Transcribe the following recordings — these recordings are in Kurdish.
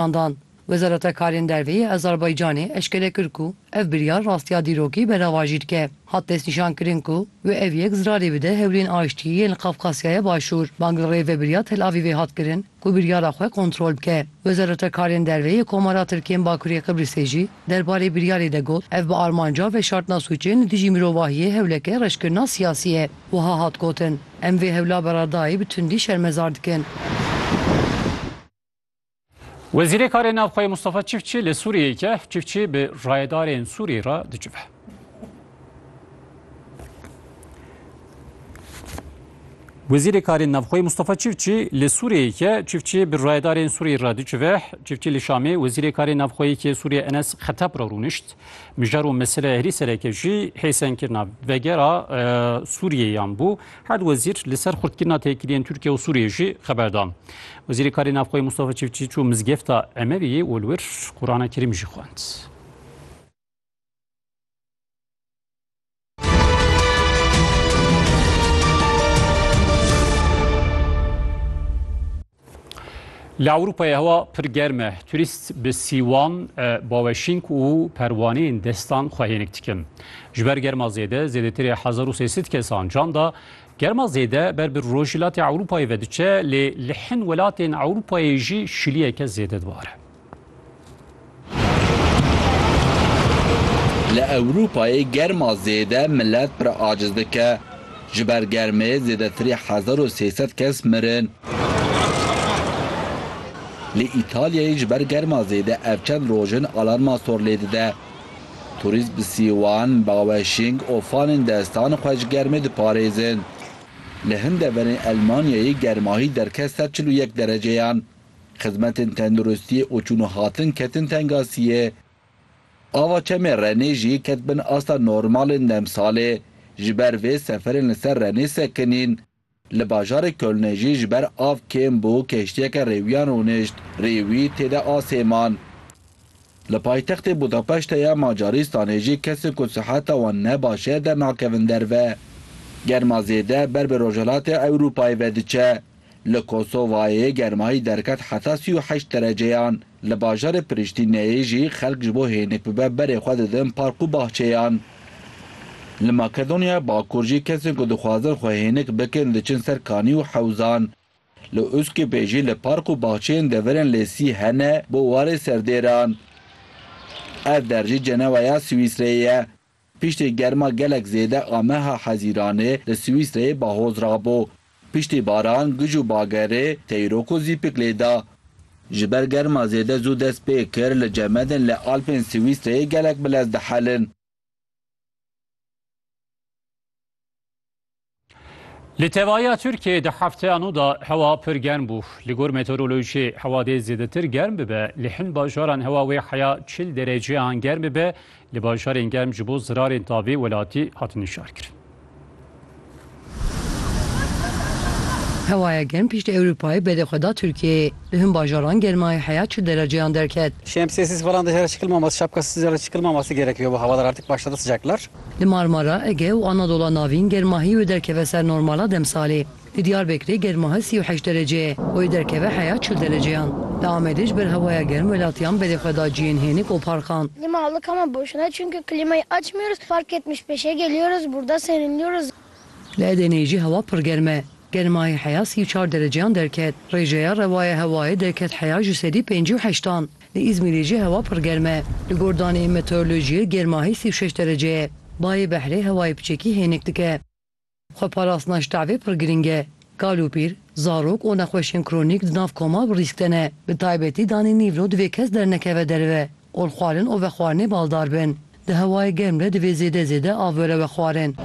Handan, Wezareta Karên Derve yê Azerbaycanê eşkere kir ku ev biryar rastiya dîrokî beravajî dike. Hat destnîşankirin ku wê ev yek zirarê bide hewlên aştiyê yên li Qafkasyaya Başûr. Bang li Rêvebiriya Tel Avîvê hat kirin ku biryara xwe kontrol bike. Wezareta Karên Derve yê Komara Tirk yên Bakurê Qibrîsê jî derbarê biryarê de got, Ev bi armanca veşartina sûcên li dijî mirovahiyê hewleke reşkirina siyasî ye. Wiha hat gotin, Em vê hewla beredayî bi tundî şermezar dikin. Wezîrê Karê Navxweyê Mustafa Çiftçi li Sûriyeyê ke Çiftçi bi rayedarên Sûriyê re dicive. Wezîrê Karê Navxweyê Mustafa Çiftçi li Sûriyeyê ke Çiftçi bi rayedarên Sûriyê re dicive. Çiftçi li Şamê Wezîrê Karê Navxweyê ke Sûriye Enes Xetep re rûnişt. Mijar û mesele herî sereke jî hêsenkirina vegera Sûriyeyan bû. Her du wezîr li ser xurtkirina têkiliyên Tirkiye û Sûriyê jî xeber dan. Wezîrê Karê Navxweyî Mustafa Çiftçî çû mizgefta Emeviyê û li wir Qurana Kerîm jî xwend. Li Ewropayê hewa pir germ e. Turîst bi sîwan, baweşînk û perwaneyên destan xwe hênik dikin. Ji ber germa zêde zêdetirê hezar û sê sed kesan can da. Germa zêde ber bi rojhilatê Ewropayê ve diçe lê li hin welatên Ewropayê jî şiliyeke zêde dibare. Li Ewropayê germa zêde milet pir aciz dike. Ji ber germê zêdetirî hezar û sê sed kes mirin. Li Îtalyayê ji ber germa zêde ev çend roj in alarma sor lê dide. Turîst bi sîwan, baweşîng û fanên destan xwe ji germê diparêzin. Li hin deverên Elmanyayê germahî derket sed çil û yek dereceyan. Xizmetên tenduristiyê û çûn û hatin ketin tengasiyê. Ava çemê Renê jî ket bin asta normalên demsalê. Ji ber vê seferên li ser Renê sekinîn. Li bajarê Kölnê jî ji ber av kêm bû keştiyeke rêwiyan rûnişt rê wî tê de asê man. Li paytextê Budapeşte ya Macarîstanê jî kesên ku siheta wan ne baş e dernakevin derve. Germa zêde ber bi Rojhilatê Ewrûpayê ve diçe. Li Kosovayê yê germahî derket heta sî û heşt dereceyan. Li bajarê Priştîneyê jî xelk ji bo hênik bibe berê xwe didin park û bahçeyan. Li Makedonyaya Bakur jî kesên ku dixwazin xwe hênik bikin diçin ser kanî û hewzan. Li Uskipê jî li park û bahçeyên deverên Lêsî hene bo warê serdêran. Ev der jî ceneweya Swîsreyê ye. Piştî germa gelek zêde a meha Hezîranê li Swîsreyê bahoz rabo. Piştî baran, gij û bagerê teyrok û zîpik lê da. Ji ber germa zêde zû dest pê kir li cemedên li Alpên Swîsreyê gelek bilez dihelin. Li tevahiya Tirkiyeyê di hefteya nû de hewa pir germ bû. Li gor meteorolojiyê hewa dê zêdetir germ bibe. Li hin bajaran hewa wê heya çil dereceyan germ bibe. Li bajarên germ ji bo zirarên tavê welatî hatin nîşankirin. Hewaya germ piştî Ewropayê belê xwe da Tirkiyeyê. Li hin bajaran germaya heya çil dereceyan derket. Şemsiyesiz falan dışarı çıkılmaması, şapkasız dışarı çıkılmaması gerekiyor bu havalar artık başladı sıcaklar. Li Marmara, Ege û Anadola Navîn germahî wê derkeve ser normala demsalê. Li Diyarbekirê germahi sî û heşt derece ye, wê derkeve heya çil dereceyan. Li Amedê ji ber hewaya germ welatiyan berê xwe da cihên hênik û parkan. Klîma alika me boşuna ye çünkü klîmayı açmıyoruz, park yetmiş beşe geliyoruz, burda serinliyoruz. Li Edeneyê jî hewa pir germ e. Germahî heya sî û çar dereceyan derket. Rêjeya rewa ya hewayê derket heya ji sedî û pêncî û heştan. Li Îzmîrê jî hewa pir germ e. Li gor daneyên meteorolojiyê germahî sî û şeş derece ye. Bayê behrê hewayê piçekî hênik dike. Xweparastina ji tevê pir girîng e. Kal û pîr, zarok û nexweşên kronîk di nav koma bi rîsk de ne. Bi taybetî danê nîvro divê kes dernekeve derve. Olxwarin û vexwarinê baldar bin. Di hewayê germ de divê zêde zêde av were vexwarin.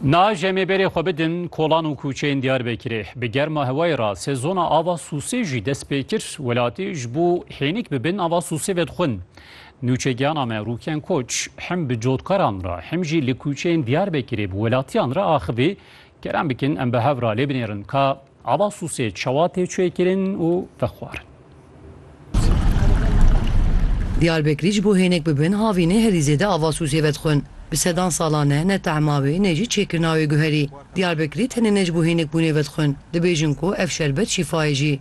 Na jemê berê xwe bidin kolan û kûçeyên Diyarbekirê. Bi germa hewayê re sezona ava sûsê jî dest pê kir. Welatî ji bo hênik bibin ava sûsê vedixwin. Nûçegiyana me Rûken Koç hem bi cotkaran re hem jî li kûçeyên Diyarbekirê bi welatiyan re axivî, Kerem bikin em bi hev re lê binêrin ka Ava sûsê çawa tê çêkirin û vexwarin. Diyarbekirî ji bo hênik bibin havînê herî zêde ava sûsê vedixwin. Bi sedan salan e ne tehma wê ne jî çêkirina wê guherî. Diyarbekirî tenê ne ji bo hênikbûnê vedixwin, dibêjin ku ev şerbet şîfa ye jî.